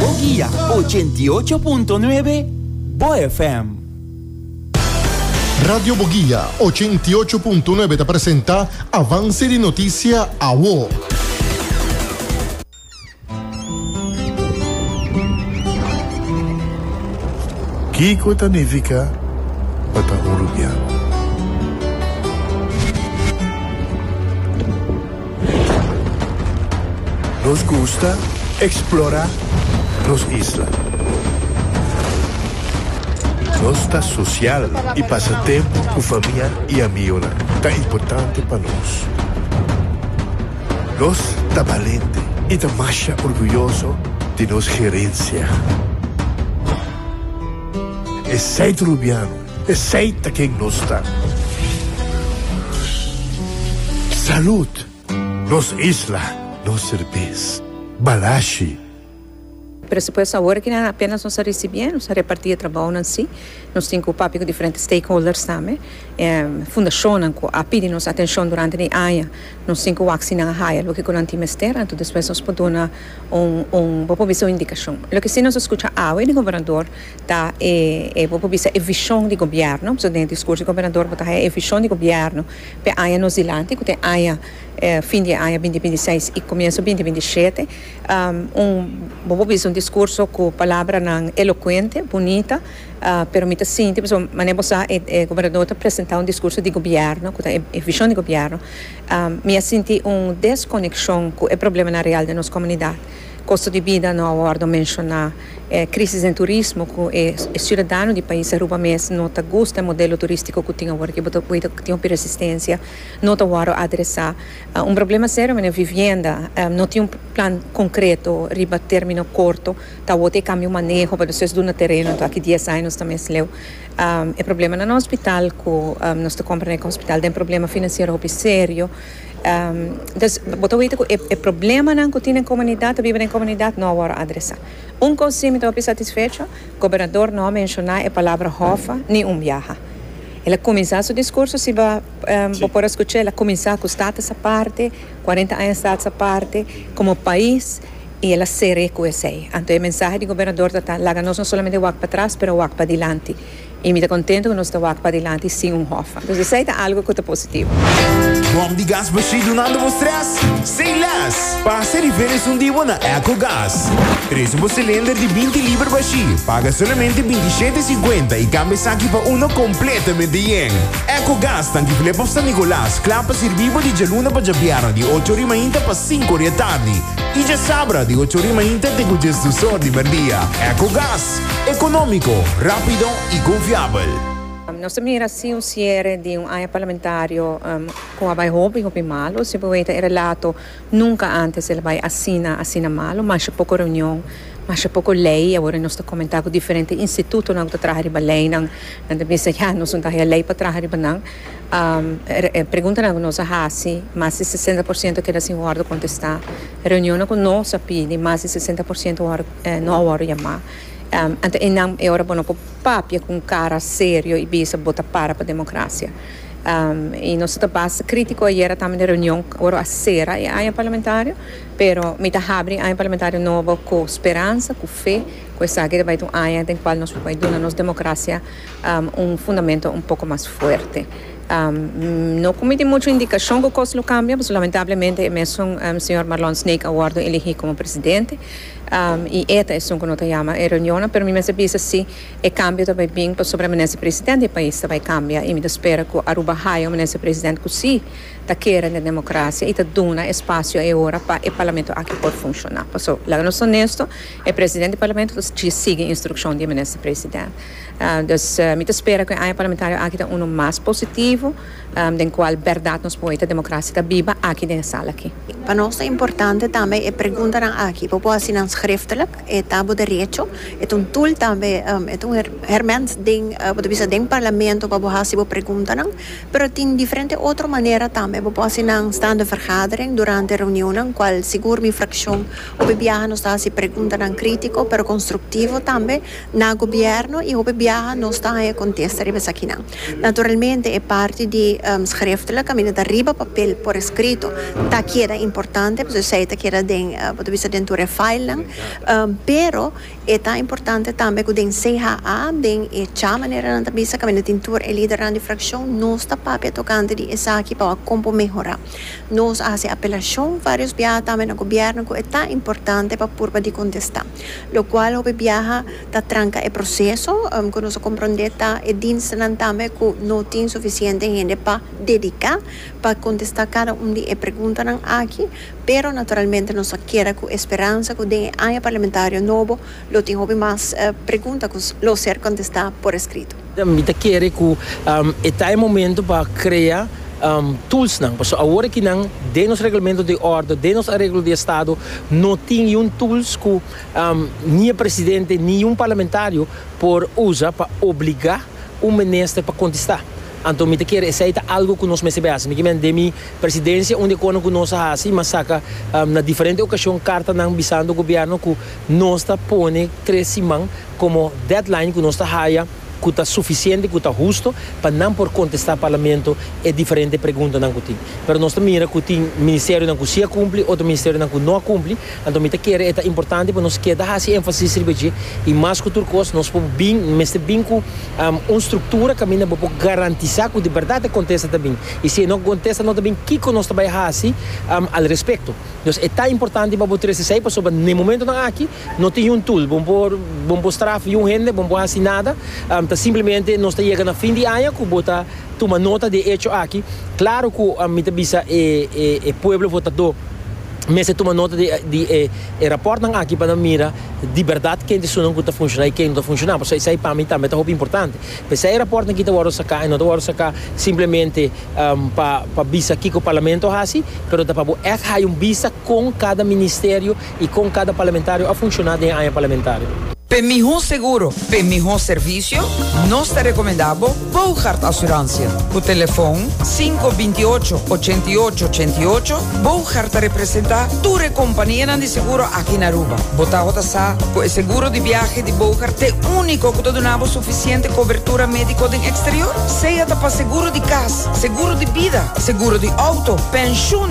Bo guia ochenta i ocho punto nuebe, Bo FM. Radio Bo Guia ochenta i ocho punto nuebe ta presenta Avance di Noticia Awo. Kiko ta nifica pa ta hurupian? Nos gusta eksplorá nos isla. Nos ta sosial i pasa tempu ku famia i amigonan ta importante pa nos. Nos ta balente i ta masha orguyoso di nos herensia. Esei Rubiano Esey ta ken nos ta. Salud! Nos isla, nos serbes. Balashi. Presupuesto awor aki nan apenas nos a ricibié, nos a reparti e trabounan si, nos tin cu papia cu diferente stakeholders tambe, e fundacionnan cu a pidi nos atencion durante di aña, nos tin cu wak si nan a haya loke cu nan tin mester, anto despues nos por duna un, un, bo por bisa un indicacion. Loke si nos a scucha awe di Gobernador, Ta e, e, bo por bisa e vishon di gobièrnu, pasobra den e diskurso di gobernador bo ta haña e vishon di gobièrnu pa e aña nos dilanti, ku ta e aña, e fin di e aña binti binti seis i komienso binti binti shete. Un, bo por bisa un diskurso ku palabranan elokuente, bunita, pero mi ta sinti, pasobra manera bo sa e, e gobernador ta presentá un diskurso di gobièrnu, ku ta e, e vishon di gobièrnu, mi a sinti un deskonekshon ku e problemanan real den nos komunidat. Kosto di bida no a wòrdu menshoná. E krísis den turismo ku e siudadano di pais Aruba mes no ta gusta e modelo turístiko ku tin awor, ke bo ta wita ku tin hopi resistensia, no ta wòrdu adresá. Un problema serio manera vivienda, no tin un plan konkreto riba término korto, ta awor ta e kambio maneho pa despues duna tereno, anto aki dies aña nos ta mes leu. E problema na nos hospital ku nos ta kompra na e hospital den problema finansiero hopi serio. Entos bo ta wete ku e problemanan ku tin den komunidat ta biba den komunidat no a wòrdu adresá. Un kos si mi ta hopi satisfecho, gobernador no a menshoná e palabra hòfa ni un biaha. El a kuminsá su diskurso, si bo bo por a skuch'é, el a kuminsá ku status aparte, kuarenta aña status aparte, komo pais, i el a ser'é ku esei. Anto e mensahe di gobernador ta ta laga nos no solamente wak patras, pero wak padilanti. I mi ta contento cu nos ta wak padilanti sin un Hoffa. Dus esey ta algo cu ta positivo. Bom di gas bashí dunando bo stress? Say less! Pasa riba el esun di bo na Ecogas. Trece bo cilinder di binti liber bashí, paga solamente binti i shete cincuenta i cambia esaki pa uno completamente yen. Ecogas ta Anguiflep of San Nicolas, cla pa sirbi bo di djaluna pa djabierna di ocho ori mainta pa sinku ori atardi i djasabra di ocho ori mainta te cu djesdusor di merdia. Ecogas! Económico, rápido y confiabel. Nos ta mira si un ciere di un aña parlamentario cu a bay hopi hopi malo. Si bo weten e relato nunca antes el a bay asina asina malo. Masha poco reunion, masha poco ley. Awor nos ta comenta cu diferente institutonan cu ta traha riba leynan nan ta bisa ya nos no ta haya ley pa traha riba nan. E preguntanan cu nos a haci mas di sesenta por ciento keda sin wordo contesta. Reunionnan cu nos a pidi mas di sesenta por ciento wor. eh, no a wòrdu yamá. Anto e nan e ora bo no por papia ku un kara serio i bisa bo ta para pa demokrasia. I nos ta basta krítiko ayera tambe den reunion ora a sera e aña parlamentario, pero mi ta habri e aña parlamentario nobo ku speransa, ku fe ku esaki ta bai ta un aña den kual nos por bai duna nos demokrasia un fundamento un poko mas fuerte. No ku mi tin muchu indikashon ku kos lo kambia, pasobra lamentablemente e mesun señor Marlon Snake a wòrdu eligí komo presidente. I eta esun ku no ta yama e reunionnan, pero mi mester bisa si e kambio ta bai bin pasobra minister presidente di e pais ta bai kambia i mi ta spera ku Aruba haya un minister presidente ku si ta kere den demokrasia i ta duna e spasio e ora pa e parlamento aki por funshoná. Paso laga nos honesto, e presidente di parlamento ta sigui instrukshon di e minister presidente. Dus mi ta spera ku e aña parlamentario aki ta unu mas positivo. Den cual berdad nos por hoy ta democracia ta biba aki den e sala aki. Pa nos ta importante tambe e preguntanan aki, bo por haci nan schriftelijk, e ta bo derecho, e ta un tool tambe, e ta un herment den, bo ta bisa den Parlamento pa bo haci bo preguntanan, pero tin diferente otro manera tambe, bo por haci nan staande vergadering, durante reunionnan, cual sigur mi fraccion hopi biaha nos ta haci preguntanan critico pero constructivo tambe, Na Gobierno y hopi biaha nos ta haya contesta riba esakinan. Naturalmente e parti di schriftelijk, caminda ta riba papel por escrito, ta keda importante pasobra esey ta keda den, bo ta bisa den tur e filenan, pero e ta importante tambe cu den CHA, den e cha manera nan ta bisa, caminda tin tur e lidernan di fraccion, nos ta papia tocante di esaki pa wak con por mehora. Nos a haci apelacion varios biaha tambe na Gobierno cu e ta importante pa purba di contesta. Locual hopi biaha ta tranca e proceso. Cu nos a comprende ta e dienstnan tambe cu no tin suficiente hende pa dedica pa contesta cada un di e preguntanan aki. Pero naturalmente nos a keda cu esperanza cu den e aña parlamentario nobo lo tin hopi mas pregunta cu lo ser contesta por escrito. Mi ta kere ku e ta e momento pa krea tulsnan, pasobra awor aki nan den nos reglamento di òrdu, den nos areglo di estado no tin yun tuls ku ni e presidente ni yun parlamentario por usa pa obligá un minister pa kontestá. Anto mi ta kere esei ta algu ku nos mester bay hasi. Mi kimen den mi presidencia unda e kono ku nos a hasi mi a saka na diferente okashon kartanan bisando gobièrnu ku nos ta pone tres siman komo deadline ku nos ta haya ku ta sufisiente, ku ta husto pa nan por kontestá Parlamento e diferente preguntanan ku tin. Pero nos ta mira ku tin ministerionan ku si a kumpli, otro ministerionan ku no a kumpli. Anto mi ta kere e ta importante pa nos keda hasi énfasis riba dje i mas ku tur kos nos por bin, mester bin ku un struktura kaminda bo por garantisá ku di bèrdat e kontesta ta bin. I si e no kontesta no ta bin kiko nos ta bai hasi al respekto. Dus e ta importante pa bo trese esei pasobra n'e momentonan aki No tin un tool bon por bon por straf yu hende bon por hasi nada ta simplemente nos ta yega na fin di aña ku bo ta tuma nota di e echo aki klaro ku mi ta bisa e e e pueblo votadó mester tuma nota di di e e rapòrtnan aki pa nan mira di bèrdat ken di esunnan ku ta funshoná i ken no ta funshoná pasobra esei pa mi tambe ta hopi importante p'esei e rapòrtnan aki ta wòrdu saká i no ta wòrdu saká simplemente pa pa bisa kiko parlamento a hasi pero ta pa bo ègt haña un bista kon kada ministerio y con cada parlamentario a funciona den e aña parlamentario. P'e miho seguro, p'e miho servicio, nos ta recomenda bo Boogaard Assurantia. Cu telefon sinku binti ocho, ochenta i ocho, ochenta i ocho, Boogaard ta representa tur e companianan di seguro aki na Aruba. Bo taho ta sa cu e seguro di biahe di Boogaard t'e unico cu ta duna bo suficiente cobertura medico den exterior. Sea ta pa seguro di cas, seguro di bida, seguro di auto, pensioen,